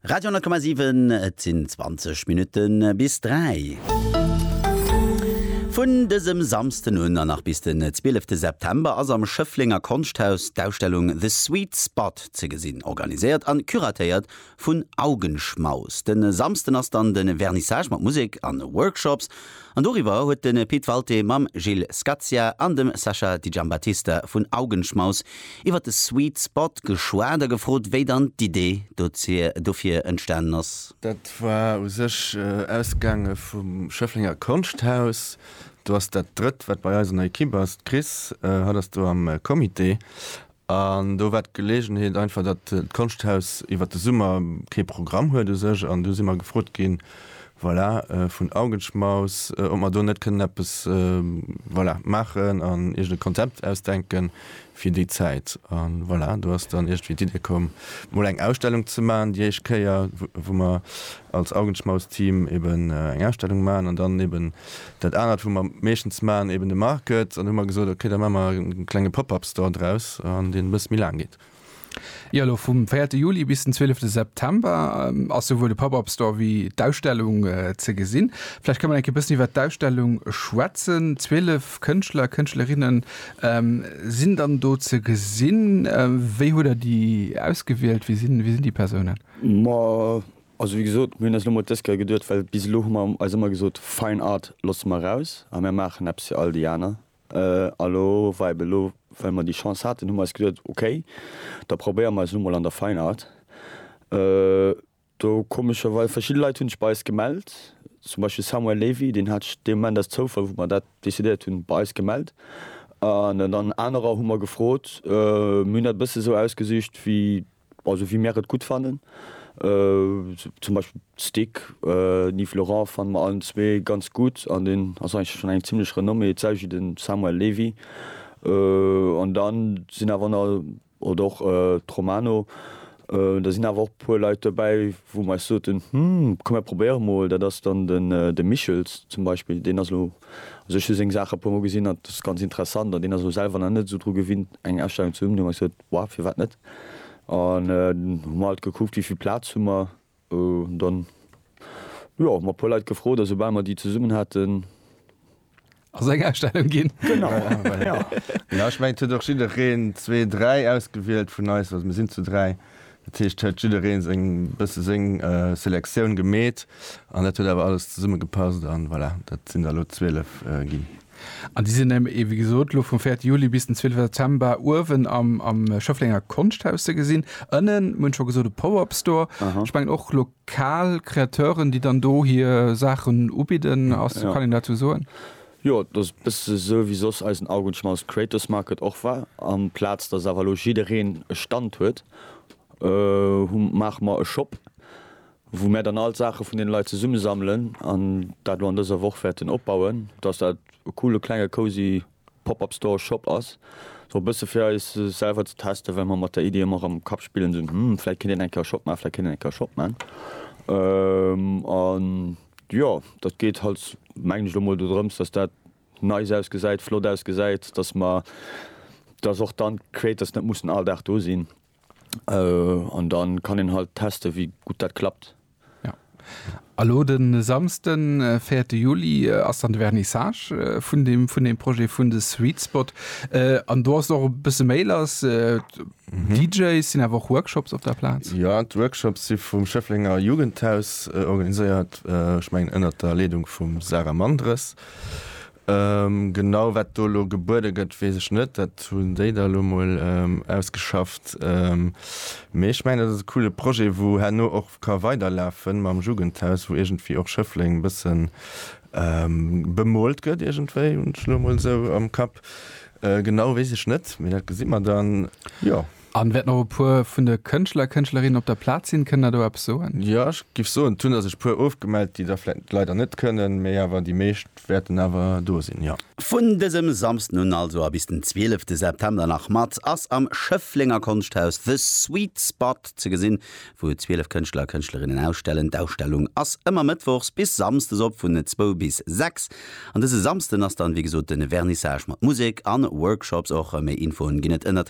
Radio 10,7, et sinn 20 Minutte bis 3. Vun dësem Samsden un an nach bis den 12 de September ass am Schëfflenger Konschthaus d'Ausstellung The Sweet Spot ze gesinn. Organiséiert an curatéiert vun Augenschmaus. Den Samsden ass dann den Vernissage mat Musek an Workshops. An doriwwer huet de Pit Walté mam Gilles Scazia an dem Sascha Di Giambattista vun Augenschmaus iwwer de Sweet Spot geschwat a gefrot, wéi dann d'Idee dofir entstanen ass. Dat war u sech ausgaange vum Schëfflenger Konschthaus. Do ass dat drëtt, wat bei eis an der Ekipp ass, d'Chris. Hatt ass do am Comité. An do war d'Geleegenheet einfach, datt d'Konschthaus iwwer de Summer kee Programm huet u sech. An du si mer gefrot ginn, voilà, vun Augenschmaus, ob mer do net kënnen eppes, voilà, maachen an iergend e Konzept ausdenke fir déi Zäit. A voilà, do ass dann iergendwéi d'Idee komm, mol eng Ausstellung ze maachen, déi éischt Kéier, wou mer als Augenschmaus-Team eben eng Ausstellung maachen an dann eben dat anert, wou mer meeschtens maachen, eben de Market. An hu mer gesot, ok, da maache mer e klenge Pop-up-Store draus, an deen e bësse méi laang geet. Jo, elo vum véierte Juli bis den zwielefte September ass souwuel de Pop-up-Store wéi d'Ausstellung ze gesinn. Vläicht ka mer enke bëssen iwwert d'Ausstellung schwätzen. Zwielef Kënschtler, Kënschtlerinne sinn dann do ze gesinn. Wéi hutt Der déi ausgewielt? Wie sinn déi Persounen? Ma, also wéi gesot, mir hunn eis elo mol dës Kéier geduecht, well bis elo hu mer eis ëmmer gesot, Fine Art loosse mer eraus a mir maachen eppes fir all déi aner. A lo war eben elo, well mer déi Chance haten, hu mer eis geduecht, okay, da probéiere mer eis elo mol an der Fine Art. Do komescherweis verschidde Leit hunn sech bei eis gemellt, zum Beispill Samuel Lévy, deen hat sech dee Moment aus Zoufall, wou mer dat decidéiert hunn, bei eis gemellt. An dann anerer hu mer gefrot, mir hunn dat e bësse sou ausgesicht, wéi Also wéi mär et gutt fannen. Zum Beispill d'Stick Yves Laurent fanne mer allen zwee ganz gutt an deen ass eigentlech schonn eng zimlech Renommée. Et selwecht wéi de Samuel Levy. An da sinn awer na, oder och d'Romano, da sinn awer och e puer Leit dobäi, wou mer eis soten, hm, komm mär probéiere mol. Dat ass dann de Michels zum Beispill. Deen ass elo, also ech hu seng Saache e puer mol gesinn an et ass ganz interessant an deen ass elo selwer nach net esou dru gewinnt eng Ausstellung ze hunn. Hu mer gesot, War, firwat net? An hu mer halt gekuckt, wéi vill Plaz hu mer. An dann, jo, hu mer e puer Leit gefrot a soubal mer déi zesummen haten. Ass eng Ausstellung ginn. Genau, jo. Jo, ech mengen, et huet och jiddereen zwee, dräi ausgewielt vun eis. Also mir sinn zu dräi. Dat heescht, et huet jiddereen seng, e bësse seng Selektioun gemeet. An dat huet awer alles zesummegepasst. An voilà, dat sinn der elo zwielef ginn. An déi sinn eben, wéi gesot, elo vum véierte Juli bis den zweeleften September uewen am Schëfflenger Konschthaus ze gesinn. Ënnen, mir hunn et scho gesot, e Pop-Up-Store. Ech mengen och lokal Kreateuren, déi dann do hir Saachen ubidden. Ass, kann een dozou soen? Jo, et ass e bësse esou, wéi soss eisen Augenschmaus Creators Market och war. Amplaz datt awer elo jiddereen e Stand huet, hu maache mer e Shop, wou mär dann all d'Saache vun deene Leit zesummesammelen an dat elo an dëser Woch wäerten opbauen, dass dat e coole klenge cozy Pop-Up Store, Shop ass, sou e bësse fir eis selwer ze testen, well mer mat der Iddi ëmmer am Kapp spillen sinn, hm, vläit kéint een eng Kéier e Shop maachen, vläit kéint een eng Kéier e Shop maachen. An jo, dat geet halt, mengen ech, elo mol dodrëms, dass dat nice ausgesäit, flott ausgesäit, dass mer, dass och dann d'Creators net mussen all Dag do sinn. An dann kann een halt testen wéi gutt dat klappt. Ja. A lo de Samsden, 4 Juli, ass dann de Vernissage vun dem, vun dem Projet vun de Sweet Spot. An do ass och e bësse méi lass. DJs, sinn awer och Workshops op der Plaz? Ja, d'Workshops si vum Schëfflenger Jugendhaus organiséiert, ech mengen ënnert der Leedung vum Sarah Mandres. Genau wat do elo gebuede gëtt, weess ech net. Dat hunn déi da elo mol ausgeschafft. Mee ech mengen, dat ass e coole Projet, wou herno och ka weiderlafen mam Jugendhaus, wou iergendwéi och Schëffleng e bësse bemoolt gëtt iergendwéi, hunn ech elo emol esou am Kapp. Genau weess ech net, mee dat gesi mer dann, jo. An wäert nach e puer vun de Kënschtler a Kënschtlerinnen op der Plaz sinn. Kënnt der do eppes soen? Jo, ech giff soen, et hunn der sech e puer ofgemellt, déi der vläit leider net kënnen, mee awer déi meescht wäerten awer do sinn, jo. Vun dësem Samsden un also a bis den 12 September nach mat ass am Schëfflenger Konschthaus The Sweet Spot ze gesinn, wou 12 Kënschtler a Kënschtlerinnen ausstellen. D'Ausstellung ass ëmmer mëttwochs bis samsdes op vun 2 bis 6 an dëse Samsden ass dann wéi gesot de Vernissage mat Musek a Workshops och. Méi Infoen ginn et ënnert